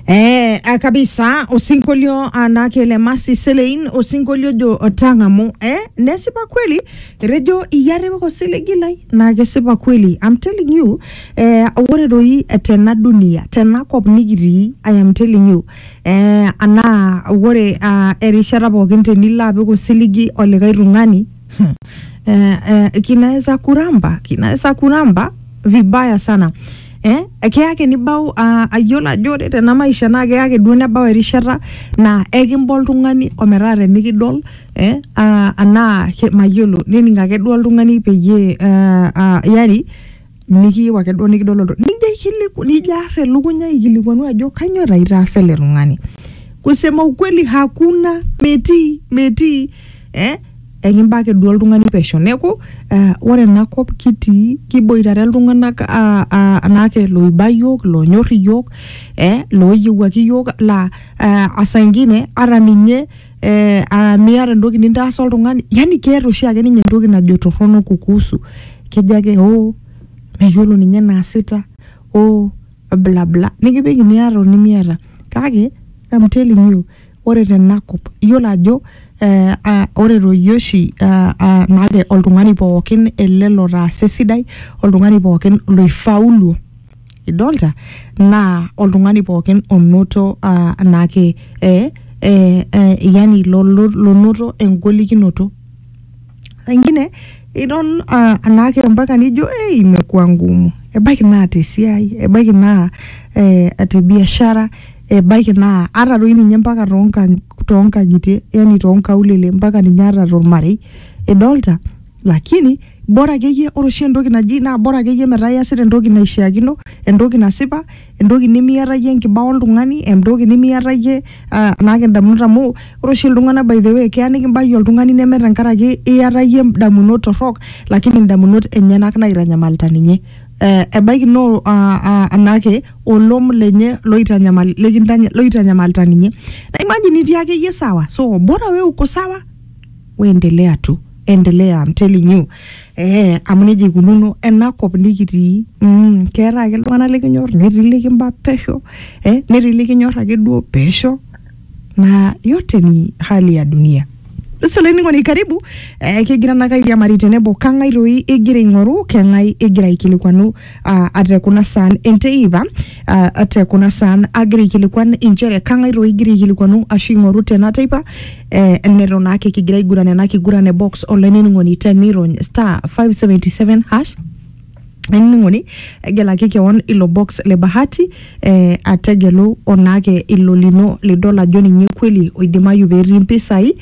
Eh, ah, kabisa usinkolio anakele masi selein usinkolio jo otang'amu eh, nesipa kweli rejo iyareweko selegilai naa kesipa kweli I'm telling you eh, ore doi tena dunia tena kop nikitii I am telling you eh, anaa ore ah, erishata pookin tenilo apik osiligi olikae tung'ani eh, eh, kinaweza kuramba kinaweza kuramba vibaya sana eh, keyake nibau uh, ayiolo ajo ore tena maisha naa keyake duo nebau erishata naa ekimba oltung'ani ometaa tenikidol eh, uh, anaa ke- mayiolo nening ake duo oltung'ani peyie uh, uh, yani mikiyieu ake duo nikidol olto nijo aikiliku nijo ar elukunya aikilikuanu ajo kanyoo taa itaasa ele tung'ani kusema ukweli hakuna metii metii eh ekimba ake duo oltung'ani pesho neeku eh, ore enakop kitii kiboitare iltung'anak ah, ah, anaake loiba yiok lonyorr iyiok eh, looyiewuaki iyiok laa eh, asaingine ata ninye eh, ah, miata entoki nintaasa oltung'ani yani keeta oshi ake ninye entoki najo torrono kukuhusu kejo ake oo meyiolo ninye naasita oo bla bla nikipik iniata onimiata kake I'm telling you ore tenakop iyiolo ajo eh, ah, ore toi oshi ah, ah, maate oltung'ani pookin ele lotaasa esidai oltung'ani pookin loifauluo idolta naa oltung'ani pookin onoto uh, naake eh, eh, eh, yani lo- lo- lonoto engolikinoto ingine idol uh, anaake mpaka nijo hey, imekuwa ngumu ebaiki naa tesiai ebaiki naa eh, te biashara ebaiki naa ata doi ninye mpaka toonkang- toonkang'itie yani toonkaulele mpaka ninye ata tormarei idolta lakini bora akeyie ore oshi entoki naji naa bora akeyie metaa iyasita entoki naishiakino entoki nasipa entoki nemiata iyie enkibaa oltung'ani entoki nemiata iyie uh, naake indamunot amu ore oshi iltung'anak by the way keya nikimbaiki oltung'ani neme tenkaraki iyata iyie indamunot torrok lakini indamunot enyenak naitanyamalita ninye eh, ebaiki no uh, uh, anake olom lenye loitanyamal likintanya- loitanyamalita ninye na imagine itii akeyie sawa so bora we uko sawa weendelea tu endelea I'm telling you eh, amu nejia ikununo ena kop nikitii mm, keeta ake iltung'anak likinyor netii likimba pesho eh, netii likinyor ake duo pesho na yote ni hali ya dunia solainining'oni karibu eh, kigira nakairiamari tenebo kang'ae toi igira aing'oru keng'ae igira aikilikwanu ah, ate kuna saan enteipa ah, ate kuna saan agira aikilikuan inchere kang'ae toi igira aikilikuanu ashu ing'oru tena teipa eh, neton naake kigira aiguran ena kiguran e box olainining'oni tenirony star 577 hash ainining'oni egelaki kewon ilo box le bahati eh, ategelu onaake ilo lino lidol ajo ninye kweli oidimayu petii mpisai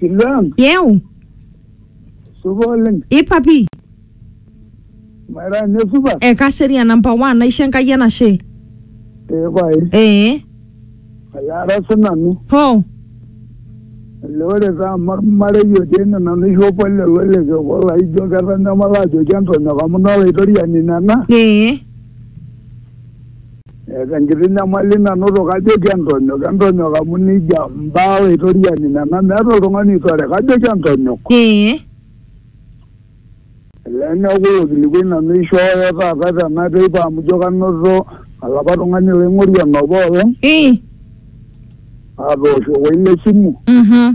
Silang, yeu supa oleng. ipapi Maira nye supa. ekaserian namba 1 naisho enkai enashe Ee pae, ee ayaara sinanu. ho Ele ore taa amu ormarei otii ene nanu isho pole loleke obo laijo ketanyamala ajoki entonyok amu nolaitoriani nena. ee Eeta enkiti nyamali nanoto kajoki entonyok, entonyok amu neijia mbaa Olaitoriani nena meeta oltung'ani oitore kajoki entonyok. Ee. Olee neaku ilo kilikuai nanu eishooyo taata tena teipa amu ijo kanoto olapa tung'ani laing'orie enoopa olong. Ii. Aatooshokoki le simu. Mhm.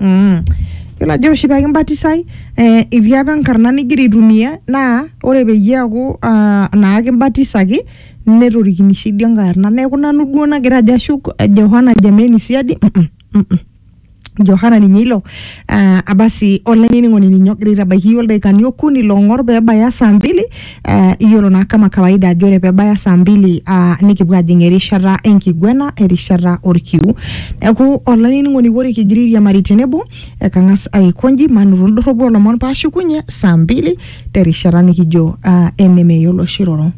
Mm. Yiolo ajo oshi pee kimbatisai eh, etii apa enkarna nigira aitumia naa ore peyie eaku ah, naa kimbatisaki netorikini sii dii enkae arna neeku nanu duo nagira ajo ashuk eh, Johana Jameni siadi mm -mm, mm -mm. Johana ninye ilo ah, abasi olainining'oni ninye ogira aitabaiki iyiook ildaikani okuni loong'or pee ebaya saa mbili Eh, iyiolo naa kama kawaida ajo ore pebaya saa mbili ah, nikipuo ajing erishata enkiguena erishata orkiu neeku olainining'oni ore kigira airiamari tenebo ekang'as aikonji manoto indorropu olomon paashukunye saa mbili terishata nikijo ah, enemeyiolo oshi roro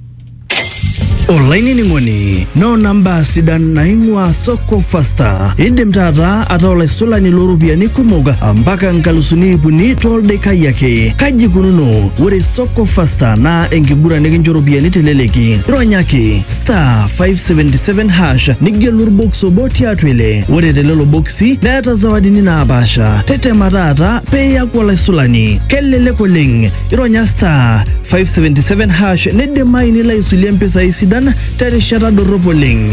olainining'oni noona mbaa sidan naing'ua soko fasta indim taata ataa olaisulani looropiyiani kumok mpaka nkalusuni ipuni toldekai ake kaji ikununo ore soko Go faster naa enkiguran nikincho ropiyiani teleleki. Ronyaki star 577 hash nigelu orbox obo tiatua ile. Ore telelo boksi neeta zawadini naapaasha. Tetema taata pee iaku olaisulani. Kelelek oleng. Ironya star 577 hash nidimayu nilo aisulie mpisai sidan terishata dorrop oleng.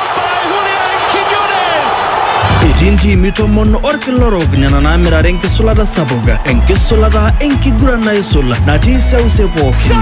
Etii ntiimi tomon orkila orok nena naamirare enkisulata sapuk, enkisulata enkiguran naisul natii seuse pookin.